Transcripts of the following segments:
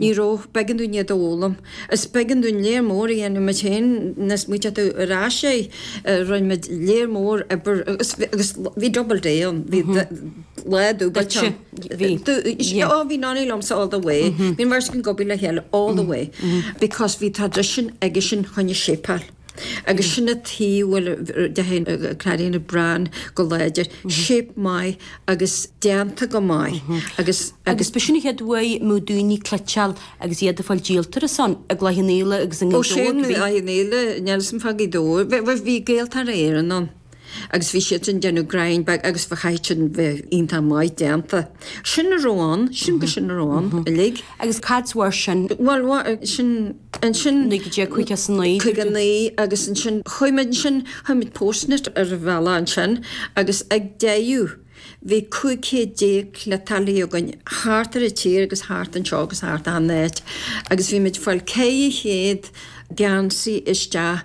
Ní raibh. B'éigean dúinn iad a fhoghlaim. Is b'éigean dúinn léar mór a dhéanamh muid féin. Nuair a smaoitíonn tú ar ais air, rinne muid léar mór oibre agus agus bhí double day ann, bhí lá dúbailte ann. Duitse? Bhí. Do, yeah. Ó, bhí Nonny liomsa all the way. Bhí an bheirt againn ag obair le chéile all the way because bhí tradition aigesean fá choinne shape a fháil. Agus sin a taobh, bhuel, de thaobh Claudine a Browne go láidir. Shape maith agus déanta go maith agus. Agus b'shin an chéad uair a raibh daoine ag cleiteáil agus iad ag fáil díolta ar a shon i gCloich Cheann Fhaola agus i nGaoth Dobhair. Ó sin, Cloich Cheann Fhaola, níl a fhios agam fá Ghaoth Dobhair, bhuel bhí Gaeltarra Éireann ann. agus bhí siadsan ag déanamh greim beag agus bheith chaithfeadh sin a bheith iontach maith déanta. Sin a raibh ann, sin go sin a raibh ann uilig. Agus cá huair sin? Bhuel sin ansin. 1959. 59 agus ansin chuaigh muid ansin chuir muid postnet ar an bhealach ansin agus ag deireadh bhí 500 déag cleiteálaí againn thart ar an tír agus thart anseo agus thart an áit agus bhí muid ag fáil 400 geansaí isteach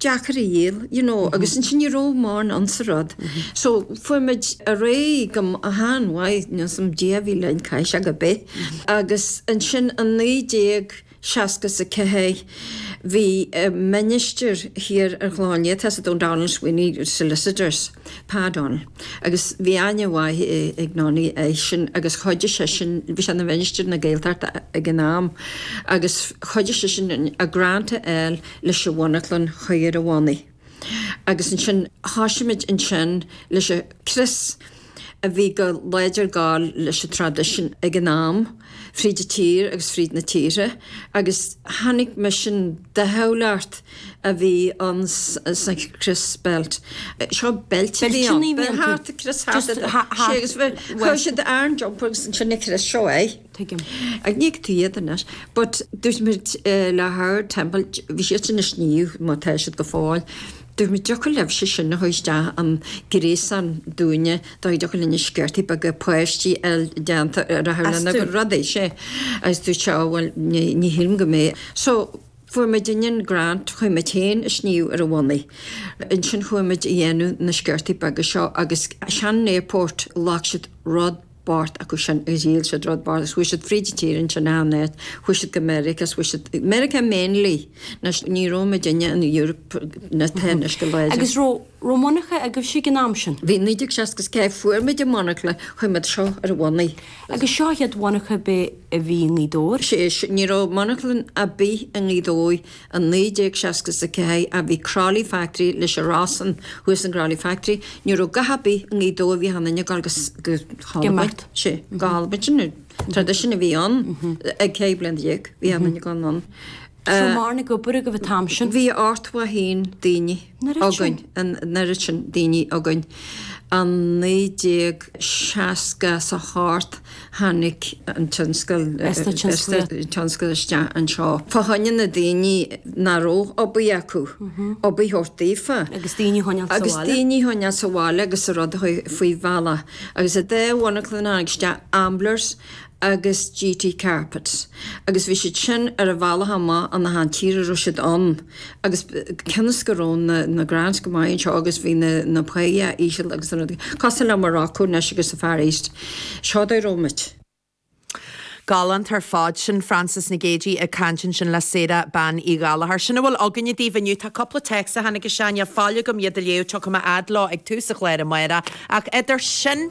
deacair a dhíol you know agus ansin ní raibh mórán ansa rud so fuair muid ar aghaidh go han-mhaith nó some Dia a bhí linn caithfidh sé go bith agus ansin i naoi déag seasca is a ceathair bhí ministir thiar ar an Chlochán Liath tá a fhios agat O'Donnell Sweeney solicitors Pa O'Donnell agus bhí aithne mhaith ag Nonny airsean agus chuidigh seisean bhí sé ina mhinistir na Gaeltachta ag an am agus chuidigh seisean an grant a fháil leis an mhonarchan a chur ar a bhonnaí agus ansin thoisigh muid ansin leis an crios a bhí go láidir ag gabháil leis an traidisiún ag an am fríd an tír agus fríd na tíortha agus tháinig misean de shamhail art a bhí ann sa chrios beilt seo beilt a bhí ann thart an crios thart sé agus chuir siad ar an jumper agus ansin an crios seo é. tuigim. Ach ní fheiceann tú iad anois but dúirt muid le Howard Temple, bhí siadsan ag sníomh mar atá siad go fóill, dúirt muid an dtiocfadh libhse sin a chur isteach i ngréasán dúinne, dá dtiocfadh linn na sciortaí beaga páistí a fháil déanta lena gcuid rudaí sé agus dúirt sé á bhuel ní shílim go mbeidh so fuair muidinne an grant, chuir muid féin an sníomh ar a bhonnaí. Ansin chuaigh muid a dhéanamh na sciortaí beaga seo agus Shannon Airport ghlac siad rud, páirt acu sin a dhíol siad thar barr is chuaigh siad fríd an tír ansin achan áit chuaigh siad go Meiriceá is chuaigh siad Meiriceá mainly na ní raibh muidinne in Europe mar atá anois go láidir agus raibh raibh monarcha agaibhse ag an am sin? Bhí 1964 fuair muid an monarcha chuir muid seo ar a bhonnaí. Agus seo an chéad mhonarcha ar bith a bhí i nGaoth Dobhair? Sé ní raibh monarcha ar bith i nGaoth Dobhair. I 1964 a bhí Crolly Factory leis a rás an thuas i gCrolly Factory. Ní raibh a dhath ar bith i nGaoth Dobhair bhí achan duine ag gabháil ag imeacht sé gal but sin tradition a bhí ann ag ceithre bliana déag bhí achan duine ag gabháil anonn. Tá mar na go bur go bh tamsin. Bhí ort wa hín daoine. againn, an oiread sin daoine againn i 1968, tháinig an tionscal, tionscal isteach anseo. Fá choinne na daoine nach raibh obair acu, obair a thabhairt daofa. Agus daoine a choinneáil sa bhaile agus an rud faoi bhealach. Agus i dtaobh na monarchana tháinig isteach Amblers agus GT Carpet agus bhí siad sin ar a mbealach amach as an tír a raibh siad ann agus cionn is go raibh na na grants go maith anseo agus bhí na na páighe íseal agus cosúil le Morocco anois agus sa Far East seo an dóigh a raibh muid. Galánta ar fad sin Frances Nic Géadaigh ag caint ansin le Sarah Bean Uí Ghallachair. Sin a bhfuil againne daoibh inniu. Tá cúpla téacs a tháinig isteach, níl faill agam iad a léamh, tiocfaidh mé a fhad leo ag tús an chláir amárach, ach idir sin,